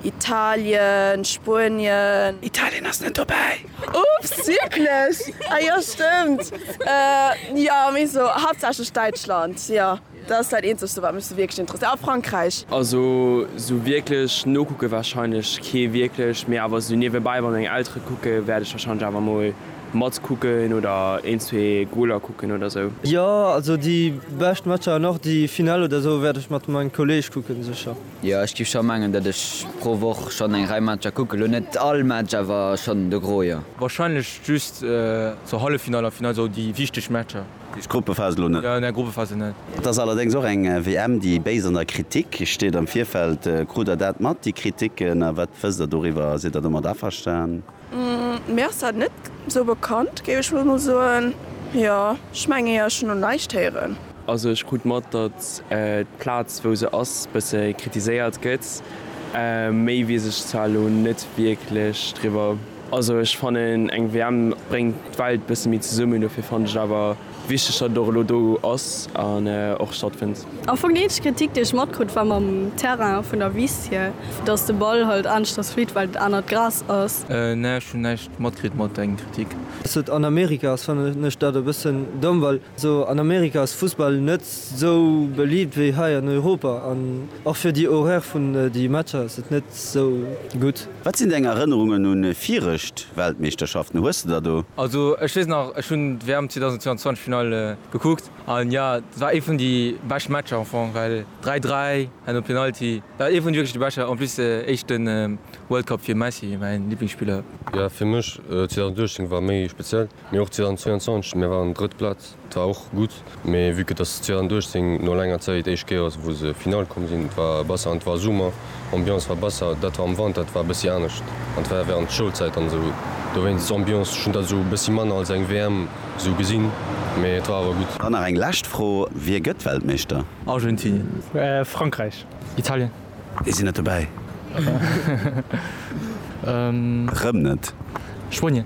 Italien, Spuenien. Italien ass net dobäi. Ups, wierklech? Ah jo, stëmmt. Jo, mee sou haaptsächlech Däitschland. Jo, dat ass dat eenzegste wat mech sou wierklech interesséiert. A Frankräich. Also sou wierklech nokucke warscheinlech kee wierklech, mee awer sou niewebäi, wa meng Eltere kucken, wäert ech warscheinlech awer mol matkucken oder een, zwee Goler kucken oder sou. Jo, also déi bescht Matcher an och déi Finale oder sou wäert ech mat mengem Kolleeg kucken, sécher. Jo ech giff schon mengen dat ech pro Woch schon eng Rei Matcher kucken, lo net all Match awer schon de Gros jo. Wahrscheinlech just zur Halleffinall a Finall, sou déi wichteg Matcher. Just Gruppephase lo net? Nä Gruppephase net. Et ass allerdéngs och eng WM déi béis an der Kritik steet am Virfeld. Krut der dat mat déi Kritiken a wat wësst der doriwwer? Sidd der domat averstan? Mir ass dat net sou bekannt, géif ech mol soen. Jo, ech mengen jo, ech hunn no näischt héieren. Also ech krut mat, datt d'Plaz wou se ass bësse kritiséiert gëtt. Méi weess ech zwar elo net wierklech driwwer. Also ech fannen eng WM bréngt d'Welt bësse méi zesummen, dofir fannen ech et awer. Wichteg, datt et och elo do ass an och stattfënnt. Am Fong déi eenzeg Kritik, déi ech matkrut, war mam Terrain vun der Wiss hier, datt de Ball halt aneschters flitt, well et anert Gras ass. Nee, ech hunn näischt matkritt mat dengem Kritik. Dass et an Amerika ass fannen ech dat e bëssen domm, well esou an Amerika ass Fussball net sou beliibt wéi hei an Europa an och fir déi Horaire vun déi Matcher ass et net sou gutt. Wat sinn deng Erënnerungen un virecht Weltmeeschterschaften? Hues de der do? Also ech wees nach, ech hunn d'WM 2022 Finale gekuckt an jo dat war ee vun déi bescht Matcher am Fong well 3, 3 no Penalty, dat war ee vun wierklech de beschter, en plus éischte World Cup fir Messi, mäin Liblingsspiller. Jo fir mech 2018 war méi speziell. Mee och 2022, mir waren drëtt Plaz, et war och gutt. Mee vue que dass 2018 no laanger Zäit d'éischt Kéier ass wou se Finale komm sinn, et war besser an et war Summer, Ambiance war besser, dat war am Wanter, et war e bëssi anescht an et war während d'Schoulzäit an esou dowéinst Ambiance, ech hunn dat esou e bëssi manner als eng WM esou gesinn, mee et war awer gutt. Dann nach eng lescht Fro, Wie gëtt Weltmeeschter? Argentinien. Frankräich. Italien. Déi sinn net dobäi. Rëm net. Spuenien.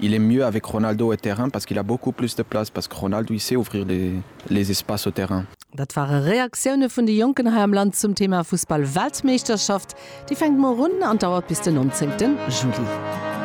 Il est mieux avec Ronaldo au terrain parce qu'il a beaucoup plus de place parce que Ronaldo il sait ouvrir les espaces au terrain. Dat ware Reaktioune vun de Jonken hei am Land zum Thema Fussball-Weltmeeschterschaft. Déi fänkt muer un an dauert bis den 19 Juli.